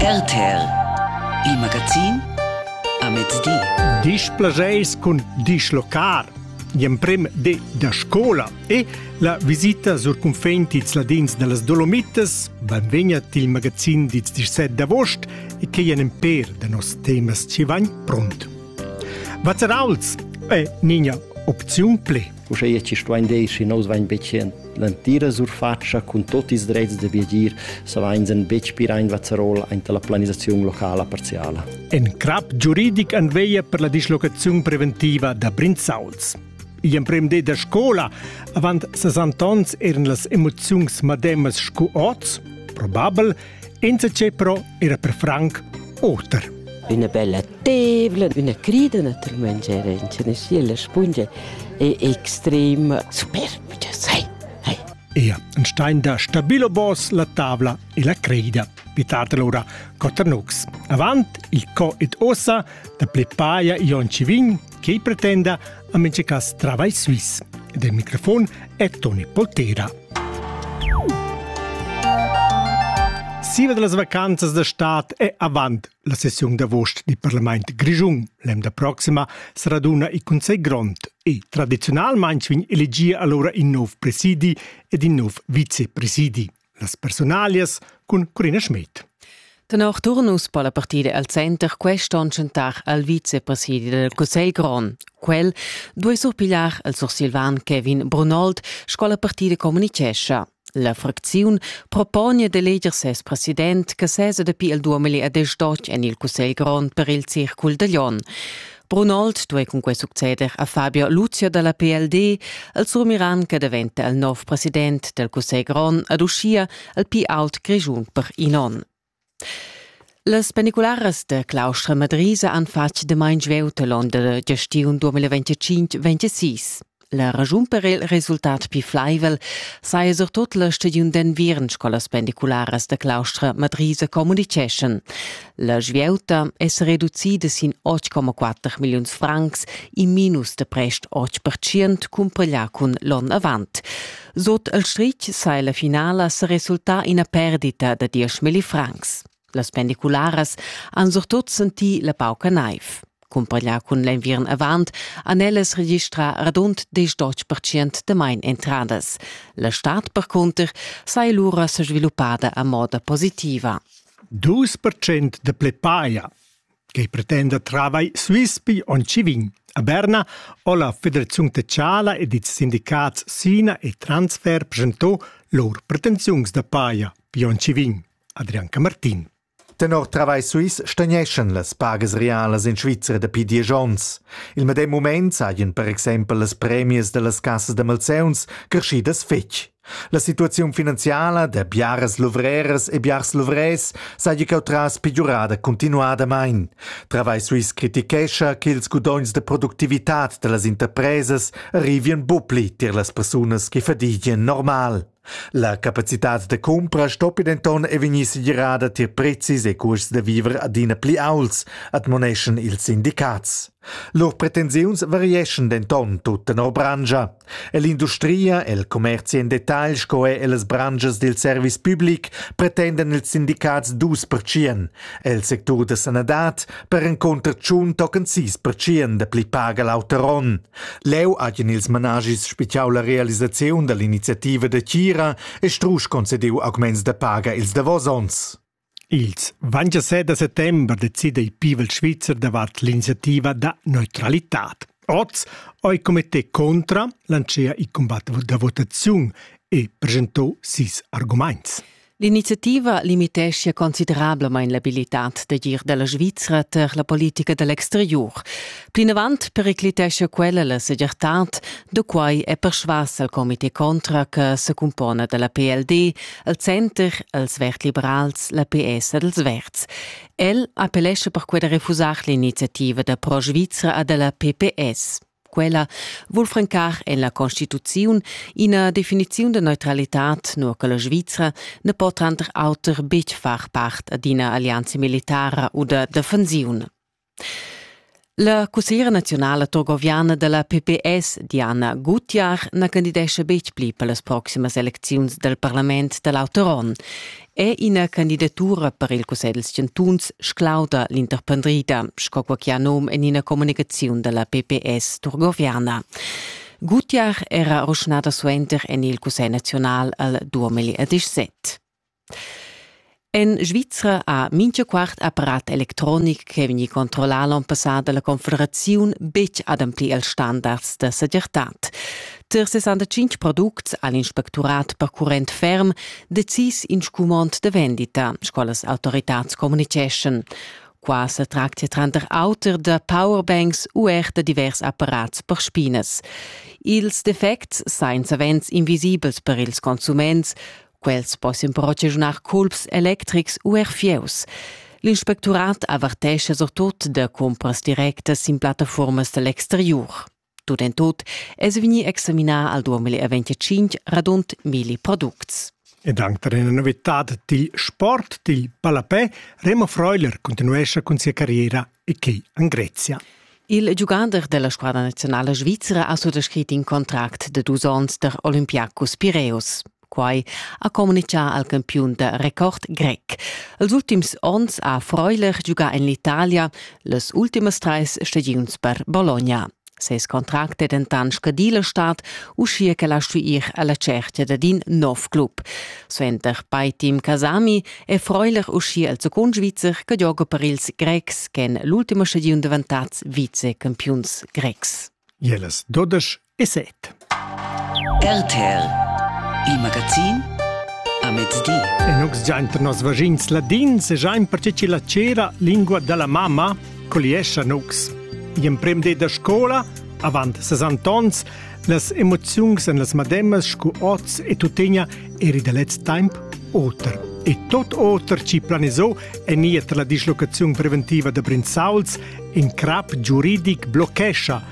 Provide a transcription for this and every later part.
RTL Il magazin a mezdi. Displasceis cun dislocar gl'emprem di da scola e la visita sur cunfein dils ladins dallas Dolomitas benvegna til magazin dils 17 d'agost e che ei en per da nos temas ci vain pront. Vazzerauls è nina opziun ple. Uscheia ci stuain dir, schi nous vain betg l'antira surfatscha cun tot ils drets da viagir, savains en betg pir ein vazzarol aint la planisaziun locala parziala. En crap giuridic an veia per la dislocaziun preventiva da Brinzauls. I empremde da scola, avant 60 ons eran las emoziuns mademas scu oz, probabel, Insatge però era per Frank oter. Üna bella tevla, üna crida naturalmente era in Tennessee, la spungia è extrem superb, je sai. Hey. Ea, ein stein da stabilo boss la tavla e la creida. Vitat allora Coternux. Avant il co ed ossa da plepaia Ion Civin che pretenda a mese cas travai suisse. Del microfon è Toni Poltera. Siva de las vacanzas da stat è avant la sessiun d'avost di Parlament Grischun. L'emda proxima sarà duna i Consell Grond e tradizionalmente vin elegia allora in nov presidi ed in nov vicepresidi. las personalias cun Corina Schmidt. Tenor Turnus po la partida al center quest'onn chantar al vicepresidi del Cussegl grond. Quel duei surpigliar al sursilvan Kevin Brunold, sco la partida communichescha. La fracziun propone d'eleger ses president che sesa dapi il 2018 en il Cussegl grond per il circul de Lyon. Brunold duei cunquei succeder a Fabio Luzio dalla PLD, el surmiran che daventa il nov president del Cussegl grond ad uschia il più aut grischun per in on. Las pendicularas da claustra Madrisa han fatg damain svelt l'onda da gestiun 2025-26. La raschun per il resultat pli flaivel saja surtut la stagiun d'enviern scolas pendicularas da claustra Madrisa communiceschan. La svieuta è sa reducida sin 8,4 milliuns francs, in minus da prest 8% cumpaglià cun l'onn avant. Sot il stritg sai la finala sa resultà ina perdita da 10 million francs. Las pendicularas han surtut sentì la pauca naiv. Cumpaglià cun l'enviern avant han ellas registrà radund 10% da main entradas. La stad percunter saja lura sa sviluppada a moda positiva. 2% da plepaia che pretenda travai svispi on Civin. A Berna ho la Federaziun Techala ed ils sindicats Sina e Transfer presentò lur pretensiuns da paia pi on Civin. Adrian Camartin. Tenor Travai Suisse stagneschan las pagas realas in Svizra dapi diesch onns. Il medem mument sajan per exempel las premias da las cassas da malseuns creschidas fetg. La situaziun finanziala da biaras luvreras e biars luvrers saja cheu tras pegiurada continuadamain. Travai Suisse critichescha ch'ils gudogns da productivitad da las interpresas arrivien bucli tier las persunas che fadigen normal. La capacitad da cumpra stoppi denton e vegnir segirada tier prezis e cuosts da viver adina pli aults, admoneschan ils sindicats. Lur pretensiuns varieschan denton tut tenor branscha. Ell'industria, el commerzi en detagl sco er ellas branschas dil service public pretendan ils sindicats dus pertschien. El sectur da sanadad per encunter tschun tocan sis pertschien da pli paga l'auter onn. Leu hagien ils managis spitgau la realisaziun dall'iniziativa da tgira e strusch concediu augments da paga ils davos onns. Ils 27 da settember decida il pivel svizzer davart l'iniziativa da neutralitad. Oz ha il comité contra lanciert il combat da votaziun e presentò sis arguments. L'iniziativa limiteschia considerablamain l'abilitad d'agir da la Svizra tar la politica da l'exteriur. Plinavant periclitescha quella la segirtad, da quai è persvas al comité contra che se cumpona da la PLD, al Center, als Verd-Liberals, la PS ed als Verds. El appellescha perquai da refusar l'iniziativa da Pro Svizra e da la PPS. Quella vul francar en la Constituziun ina definiziun de neutralitad, nur che la Svizra ne po tranter auter betg far part ad ina allianza militara oder defensiun. La cussegliera nazionale torgoviana della PPS, Diana Gutjahr, na candidesce betg pli per las proximas elecziuns del parlament dell'auter onn. è ina candidatura per il cussegl dals chantuns sclauda l'interpendrida, sco quai che ha nom en ina communicaziun da la PPS turgoviana. Gutiach era ruschnada suenter en il Cussegl naziunal al 2017. En Svizra ha mincha quart apparat electronic che vegni controllà l'on passà dalla Confederaziun betg adempli als standards da segirtad. Tar 65 products ha l'inspecturat percurrent ferm decis in scumond da vendita, sco las autoritads communiceschan. Qua sa tractia tranter auter da powerbanks u er da divers apparats per spinas. Ils defects sain savens invisibels per ils consuments, quels possian però giaginar culps electrics u er fieus. L'inspecturat avertescha surtut da cumpras directas sin plattafuormas da l'exteriur. Tut en tut es vegni examinà al 2025 radund milli products. Ed anche per una novità dil sport dil ballapè, Remo Freuler continuesce con sia carriera e che in Grezia. Il giugader della squadra nazionale svizzera ha sottoscritto un contract de dus onns der Olympiacos Pireus. Quai ha communitgà al campiun da record grec. Els ultims onns ha Freuler giugà en l'Italia las ultimas trais stagiuns per Bologna. Ses contract è dentant scadì la stad, uschia ch'el ha stuì ir alla cerchia dad in nov club. Suenter Paitim Kasami è Freuler uschia il secund Svizzer che gioga per ils Grecs ch'èn l'ultima stagiun davantads vicecampiuns grecs. Jeles 12 e set. RTL, il magazin a mezdi. E nux giainter nos vaschins ladins e giain perche chi la cera lingua della mamma coliescha nux. In prem de da scola, avant 60 ans, las emoziuns en las mademas scu oz e tuttegna eri da lez temp oter. E tot oter ci planisò e niet la dislocaziun preventiva da Brinzauls in crap giuridic blochescha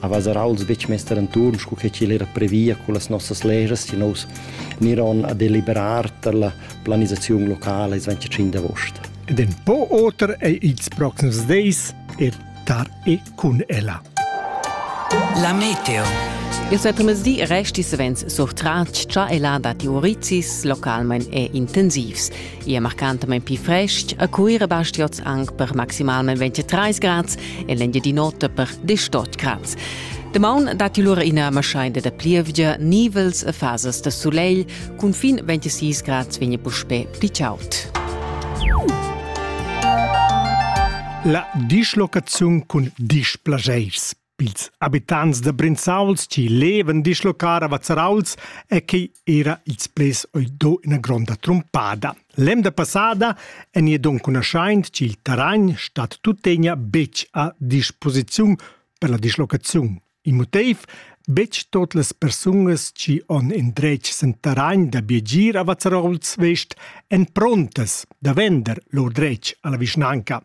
avess er auls betg mester enturn sco che ch'igl era previa con las nossas leras si nous niron a deliberar per la planisaziun locala ils 25 d'agost. Ed en po oter è ils proxims days er tar e cun ella. La meteo. Il settemesdi resti savens surtratg cha e la datti urizis localmain e intensivs. i è marcantamain pli frestg. A Cuira basti oz anc per maximalmain 23 grads e l'Engiadin'Ota per 18 grads. Damaun datti lura ina maschaida da plievgia, nivels e fasas da sulegl. Cun fin 26 grads vegn puspè pli chaud. La dischlocaziun cun displaschairs pils habitants da Brinzauls chi levan dislocar a Vazzarauls e che era ils plais oi do ina gronda trumpada. L'emda passada en e don cunaschaint chi il terragn stat tuttegna betg a disposiziun per la dislocaziun. In motiv betg tot las persungas chi on indretg sen terragn da biegir a Vazzarauls West èn prontas da vender lur dretg alla vischnanca.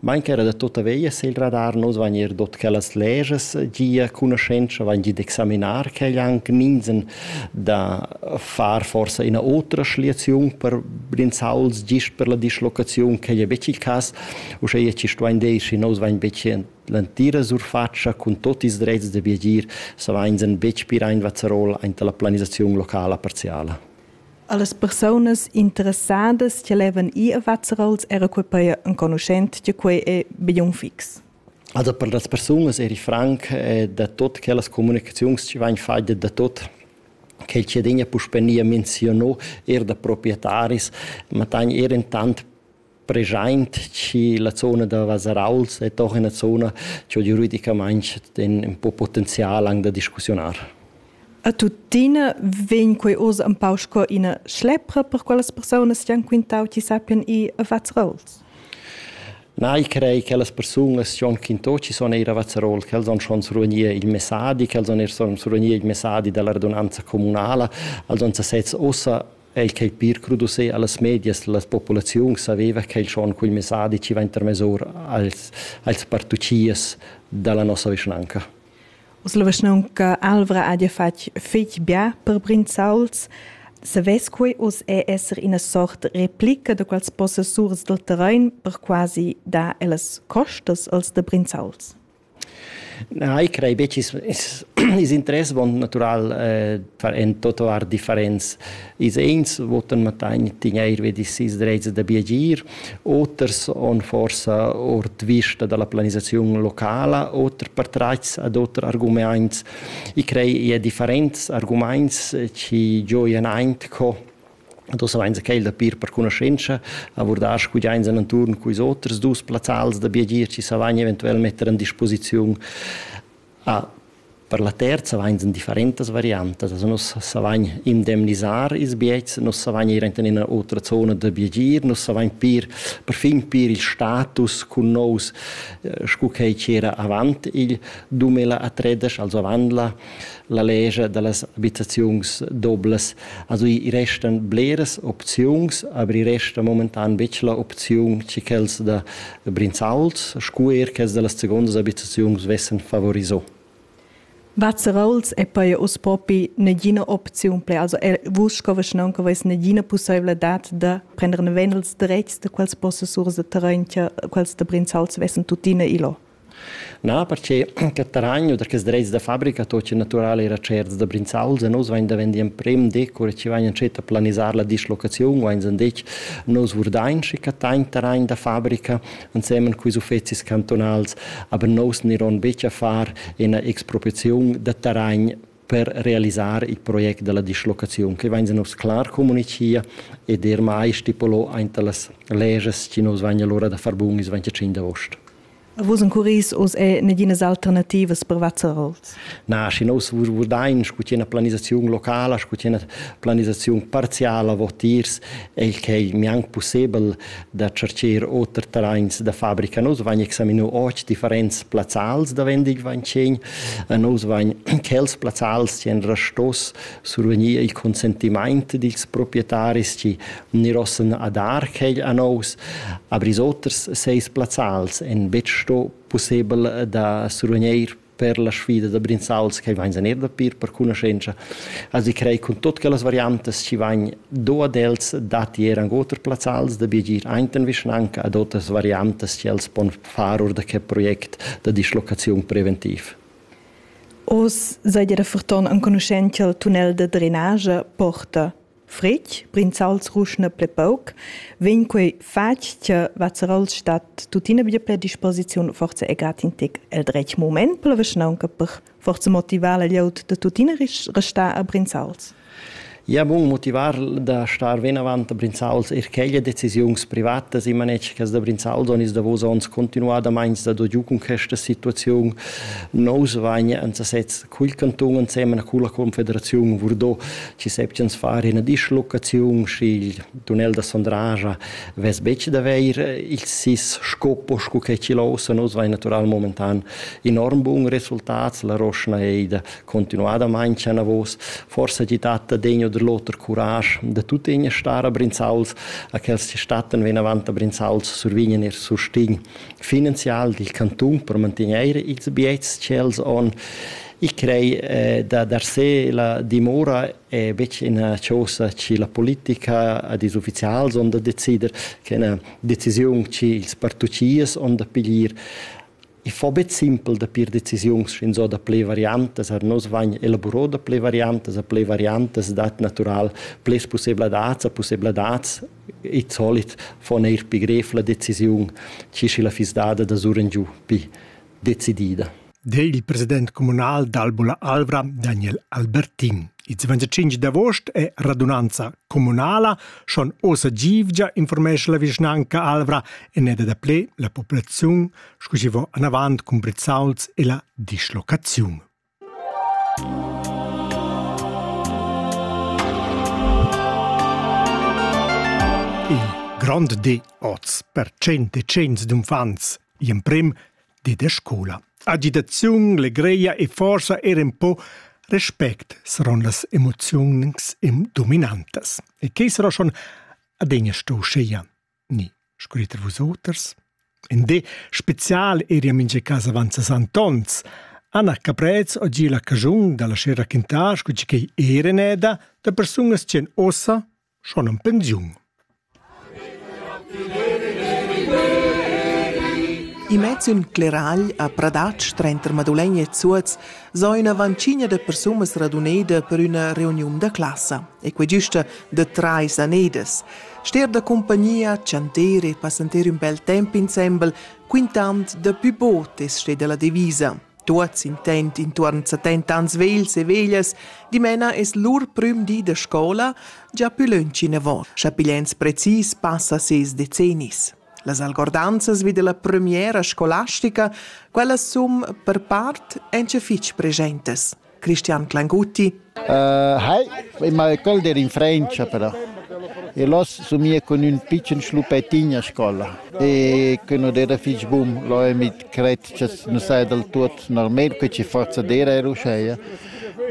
Main ch'eira da tuotta veglia s'el radar nu dvagnir dot quellas lejas. Gia cugnuschentscha vain gid examinar quel anc minzan da far forsa üna otra schliaziun per brinzauls gist per la dislocaziun. Quai es betg il cas. Uschea chi stuvain dir, schi nous vain betg l'antira surfatscha cun tuot ils drets da viagir, savainsan betg pir aint Vazerol aint la planisaziun locala parziala. Allas persunas interessadas che levan ir a Vazzarols era quei pei enconuschent che quei ei bein fix. Also per las persunas eri franc da tot quellas comunicaziuns che vain fatte da tot che ciadin puspè nia menzionò er da proprietaris, ma tan er intant preschaint chi la zona da Vasarauls è doch üna zona chi ho giuridicamaing ün po potenzial anche da discussiunar. A tuttina vegn quei oz un pau sco ina schlepra per quellas persunas che han quintau chi sappian ir a Vazzarolz? Na, io crei che las persunas che han quintau chi son eir a Vazzarol, quels han schon survegnir il messadi, quels han eir son survegnir il messadi dalla radunanza comunala, els han sesezs ossa El ch'ei pir crudus ei allas medias las populaziuns saveva ch'el schon quel messadi ci va intermesur als, als partucias dalla nossa vischnanca. Os la vischnaunca Alvra ha ja fatg fetg bia per Brinzauls. Savess quei oz è esser ina sort replica da quels possessurs del terrain per quasi dar ellas costas als de Brinzauls? Na, io crei be chi's i's interess dovant natural en tot our differents. Ils uns votan mattagn tegnair vi sis drezas da biagir, oters on forsa ord vista da la planisaziun locala, oter per trats ad oter argumaints. I crei i ha differents argumaints chi gioian aint co Ed ossa vainsa quel da pir per cunascenza a vurdar scu giains en anturn culs oters dus plazzals da biagier chi sa vain eventuel metter an disposiziun a per la terza vainsan differentas variantas. Also nus savain indemnisar ils biets, nus savain ir aint in üna otra zona da biagier, nus savain pir perfin pir il status cun nous scu quai chi era avant il dumela a Tredesch, also avant la la legia da las abitaziuns doblas. Also i restan bleras opziuns, aber i resta momentan betg la opziun che quels da Brinzauls, scu er quels da las segondas abitaziuns vessen favoriso. Vazerauls è poi uss propi negina opziun ple. Also vus sco vischnaunca veis negina possibilitad da prendere venels dretgs da quels possessurs de terrain che quels de Brinzauls vessen tuttina ilo. Na, perche che taragn u da quels drets da fabrica tochen natural era certs da Brinzauls e nus vain davendi emprem decur e chi vain entschet a planisar la dislocaziun, vain sandetg nus vurdain schi cattain taragn da fabrica ensemen culs uffezis cantonals, aber nus niron betg a far ina expropriaziun da taragn per realisar il project della dislocaziun, che vain nos clar comunicia ed er mai stipulò aint las leges chi nus vain allora da far bun ils 25 d'aost. Vus encuris oz è neginas alternativas per Vazzarols? Na, schi nous vurdain scu tia planisaziun locala, scu tia planisaziun parziala votiers, è il che è mianc pussebel da cercher oter terrains da fabrica. Nous vain examino oz differents plazzals da vendig vain tschegn, nous vain quels plazzals tien rastos survegnir il consentimaint dils proprietaris, chi Gnir ossa a dar quegl a nous, abris oters seis plazzals en betg sto pussebel da survegneir per la sfida da Brinzauls che vains eir da pir per cunoschentscha. Also ich crei cun tuot quellas variantas chi vain do ad els datti eir anc oter plazzals da biegir aint in vischnanca ad oters variantas chi els pon far or da que project da dislocaziun preventiv. Oz seid ihr ferton enconuschent cha'l tunnel da drenage porta fritg, brinzals ruschna ple pauc, vegn quei fatg che Vazzerol stat tuttina bia per disposiziun forza e gratintic el dretg moment, per anche per forza motivar la glieud de tuttina restar a brinzals. Ja, bun motivar da star venavant a Brinzals er quelle decisiuns privatas in manetschas da Brinzal don is davos ons continuadamente da do giu con questa situazione nous vagna an sasez cul cantun ensemen culla confederaziun Vurdò ci septians far ina dislocaziun sch'il tunnel da Sondraja vess betg da veir il sis scopo sco che ci lausa nus vai natural momentan enorm bun resultats la roschna ei da continuadament chana vos forse ti tatta degno der loter courage da tutte in stara brinzauls a quels ci statten ven avant a brinzauls survignen ir sustin finanzial dil cantun per mantener ils biets tschels on. Ich crei eh, da dar se la dimora è betg una cosa che la politica ad is ufficials on da decider, che è una decisione che ils particiers on da piglier. I fa bet simpel da pir decisiuns fin so da ple variantas, ar nos vagn elaborò da ple variantas, a ple variantas dat natural ples possibladats, a possibladats id solit fon eir pi grev la decisiun, chi schi la fiss dada da surengiu pi decidida. Dei il president communal d'Albula Alvra, Daniel Albertin. Il 25 d'agost è radunanza comunala, schon osa givgia informesce la vischnanca Alvra e neda da ple la popolaziun, scusi vo anavant cun brizzauls e la dislocaziun. Il grond di oz per cent e cents d'uffants, gl'emprem di da scoula. Agitaziun, legreia e forsa er un po respect saron las emoziuns im dominantas. E che sarà schon adegna sto scheia. ni scriter vusoters. In di special eri a mincha casa avant ses Antons. Anna Caprez o gi la cagiun da lascher raquintar sco chi ch'ei era neda da persunas ch'en ossa schon en pensiun. Imagin cleragl a Pradatsch trenter Madulegna e Zuoz so ina vancigna de persunas raduneda per üna reuniun da classa, e quei giusta de trais anedas. Ster da compagnia, chanter e passentar ün bel temp insembel, quintand daplü bod es stet da la devisa. Tuots intent intuorn setenta ans vegls e veglias, dimena es lur prüm di da scoula già pü lönch inavant, scha pigliens precis passa ses decennis. Las algordanzas vi della premiera scolastica, quellas sun per part anche fich presentes. Christian Clanguti. Uh, hi, ma quel der in Francia però. E l'os somia con un piccen schlupettin a scola. E che non era fich bum, lo è mit cret che non sai del tutto normal, che ci forza dera era usceia.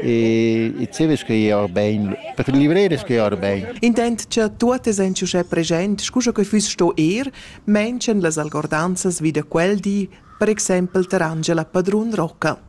E e ce ves che iar ben, per livrere che iar ben. Intent che tuotes ein ciuschè present, scusa che füss sto er, mention las algordanzas vi da quel di, per exempel ter Angela Padrun Rocca.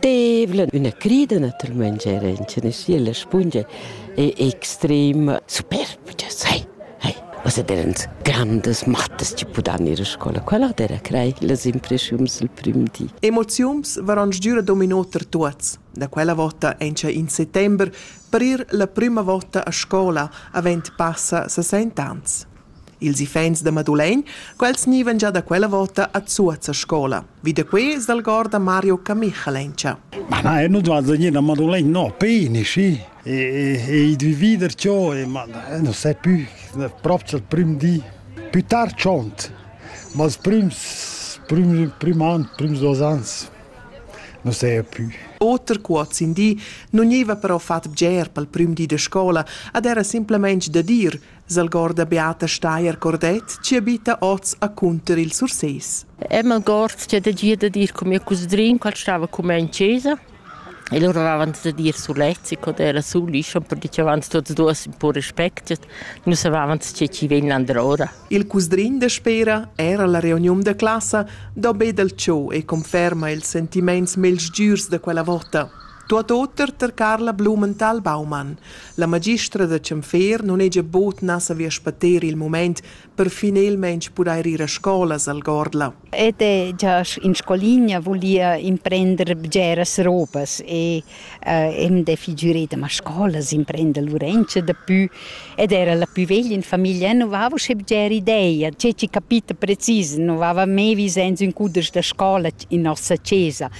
tevla, üna crida naturalmaing era inchaneschi alla spungia e extrema superb, cha sai, hai, ossa derans grandas mattas chi pudan ir a scola. Quella d'era crei las impreschiums il prim di. Emoziuns varan sgür ad ominoter tuots. Da quella vota encha in settember per ir la prüma vota a scola avent passa 60 ans. Ils iffaints da Madulegn, quels gnivan già da quella vota a Zuoz a scola. Vi da quai s'algorda Mario Camichalencia. Ma na, eu nu vado gnir a Madulegn, no, peni, schi. E, e, e dvi vider ciò, e, ma eu non sai più, proprio il prim di. Più tard tschont, ma els prüms, prüm, prüm an, prüms duos ans, non sei più. Oter cuoz in di non gniva però fat bger pel prüm di da scola, ad era simplement da dir S'algorda Beata Steier Cordet chi abita oz a Cunter il Sursés. E m'algord che de dir de dir con mio cusdrin qual stava come in chiesa e loro avevano da dire sulezzi con era suli per dicevano tutti e due un po' rispetto non sapevano se ci vengono allora il cusdrin de Spera era alla reunion de classa do be dal ciò e conferma il sentiments mels giurs de quella vota Tuot oter ter Carla Blumenthal Baumann. La magistra da Cemfer non hegia bod na savia spatter il moment per finelmaing pudair ir a scola al Gordla. Ed è già in scoligna volia imprender bgeras robas e uh, em de figureda ma scolas imprender l'urencha da pü ed era la pü veglia in famiglia non vava sche bger ideia, ce ci capita precis, non vava me vi senza un cuders da scola in nossa chesa.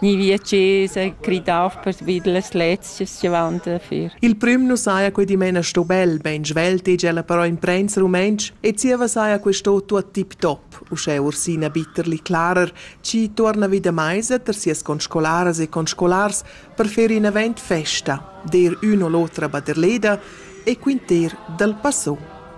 Gni via chesa, gridar pervi las lezias che van dafür. Il prüm nu saja que dimena sto bel, ben svelt egl però imprensa rumentsch e zieva saja questo tuot tip-top, uschè Ursina Bitterli clarer, chi torna vi da maisa ter sias conscolaras e conscolars per fer in event festa, der ün o l'otra baderleda e quinter dal passò.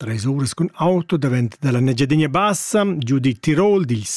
Tres uras cun auto davent dalla Engiadina Bassa giu dil Tirol dil sid